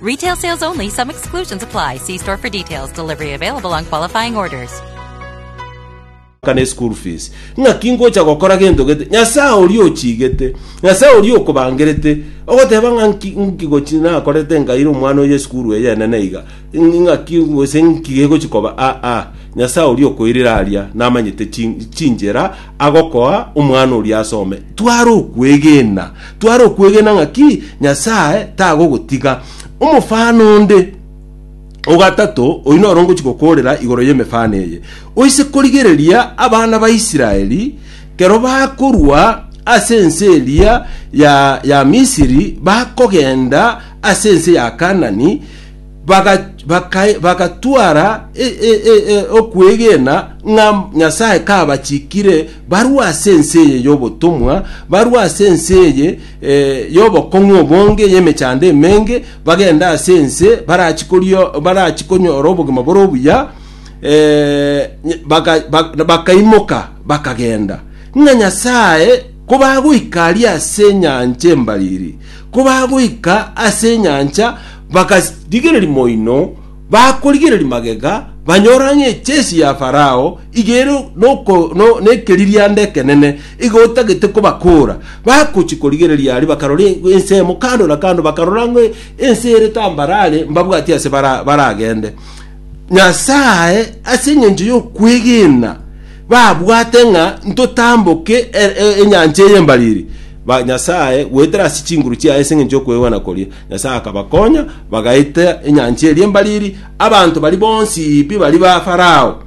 Retail sales only. Some exclusions apply. See store for details. Delivery available on qualifying orders. kana eschool fees ng'aki ngocha gokora gento gete nyasaye oria ochigete nyasaye oria okobangerete ogoteba ng'a nki nki gochi nakorete nkaire omwana oye esukuru eye enene iga ng- ng'aki gose nki gegochi koba aa nyasaye oria okoirire aria namanyete chi- chinchera agokoa omwana oria asome, tware okwegena, tware okwegena ng'aki Nyasae tagogotiga. Omofano onde o gatato oyio noro ngochia gokoorera igoro y'emefano eye. Oise korigereria abana ba Israeli kero bakorwa ase ense eria ya, ya Misiri, bakogenda ase ense ya Kaanani, baga- baka- bagatwara e- e- e- e- okwegena ng'a Nyasae kabachikire barue ase ense eye y'obotomwa, barue ase ense eye eh, y'obokong'u obonge, y'emechando emenge, bagende ase ense barachikorio barachikonyora obogima bore obuya, eh, ny- baka- bak- bakaimoka bakagenda ng'a nyasae kobagoika aria ase enyancha embariri kobagoika ase enyancha Bakarigereria moino, bakorigereria magega, banyora ng'a echesi ya Farao iga ere noko- no- nekeririanda ekenene, iga otagete kobakoora. Bagochia korigereria aria, bakarora e- ensemo kando na kando, bakarora ng'a ense ere tambarare, mbabwatie ase bara- baragende. Nyasae ase engencho y'okwegena babwate ng'a ntotamboke e- e- enyancha eye embariri, ba- Nyasae goetera ase chinguru chiaye ase engencho y'okwegena koria. Nyasae akabakonya, bagaita enyancha eria embariri, abanto baria bonsi pi baria ba Farao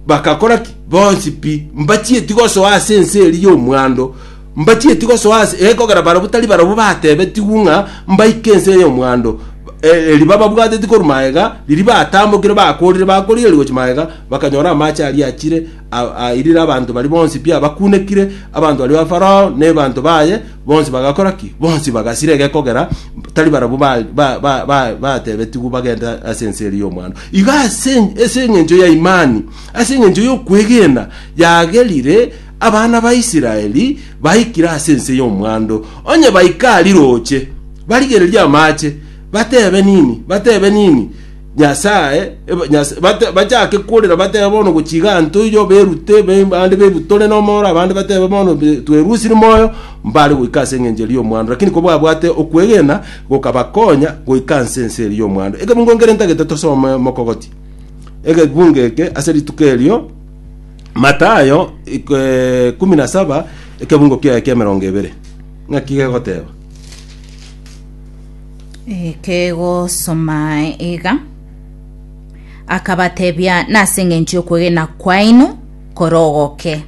bagakora ki? Bonsi pi mbachieti gosoa ase ense eria y'omwando, mbachieti gosoa ase eh, kogera barabwo tari barabwo batebetigwe ng'a mbaike ense eye y'omwando Eh, eri bababwateti korwa magega riria batambokire bakorire bakorieria gochia magega bakanyora amache aria achire A- Airire abanto baria bonsi pi abakunekire, abanto baria ba Farao na ebanto baye bonsi bagakora ki? Bonsi bagasira egekogera, tari barabwo ba- ba- ba- ba- batebetigwe bagende ase ense eria y'omwando. Iga ase ase eng'encho ya imani, ase eng'encho y'okwegena, yagerire abana ba Israeli baikire ase ense y'omwando. Onye baika riroche, barigererie amache, batebe nini? Batebe nini? Nyasae, eba- Nyas- bate- bachake korera batebe bono gochiga ntoiyo berute be- bande berutore nomoro abande batebe bono be- twerusiri moyo mbare goika ase eng'encho eria y'omwando lakini kobwabwate okwegena gokabakonya goika nse ense eria y'omwando ekebungo nkere ntagete tosome mokogotia ekebungo eke ase rituko erio matayo iko- eh, kumi na saba ekebungo kiaye kia emerongo ebere ng'aki gegoteba Kegosoma iga akabatebia nase eng'encho y'okwegena kwaino korogoke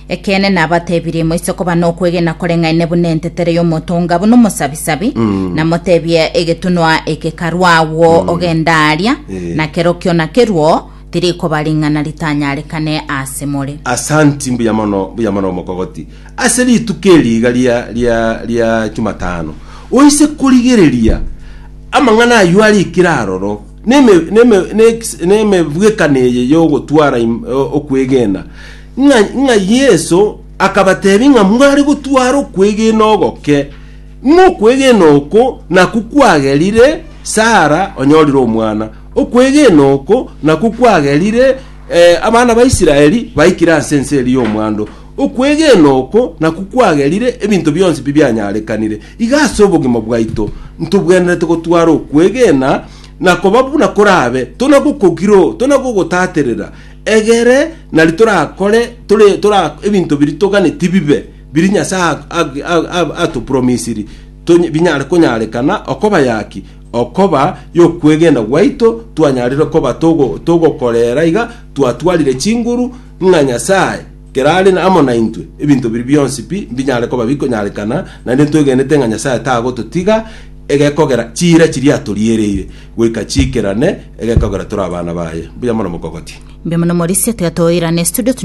ekeene nabatebirie moise koba nokwegena koreng'aine buna entetere y'omotonga buna omosabisabi namotebie egetunwa eke karwa agwo ogenda aria Eh. na kerokio nakerwo tirikoba ring'ana ritanyarekane ase more Asanti mbuya mono mbuya mono omokogoti Ase rituko eri iga ria, ria, ria Chumatano, oise korigereria amang'ana ayio arikire aroro, neme, neme, nex- nemebwekano eye y'ogotwara im- o- okwegena, ng'a, ng'a Yeso akabatebia ng'a mware gotwara okwegena ogoke, ng'a okwegena oko nakwo kwagerire Sara onyorire omwana, okwegena oko nakwo kwagerire eh, abana ba Israeli baikire ase ense eri y'omwando, Okwegena oko nakwo kwagerire ebinto bionsi pi bianyarekanire. Iga ase obogima bwaito ntobwenerete gotwara okwegena na koba buna korabe, tona gokogiro, tona gogotaterera, egere nari torakore tore tora ebinto biri toganeti bibe, biri Nyasae atopromisiri tonye binyare konyarekana okoba yaki okoba yokwegena gwaito twanyarire koba togo togokorera iga twatwarire chinguru ng'a Nyasae kerare amo naintwe, ebinto biria bionsi pi mbinyare koba bikonyarekana, naende ntwegenete ng'a Nyasae tagototiga egekogera chiira chiria atoriereire, goika chiikerane egekogera tore abana baye. Mbuya mono mokogotie. Mbuya mono Morisia, tiga toirane studio tunyore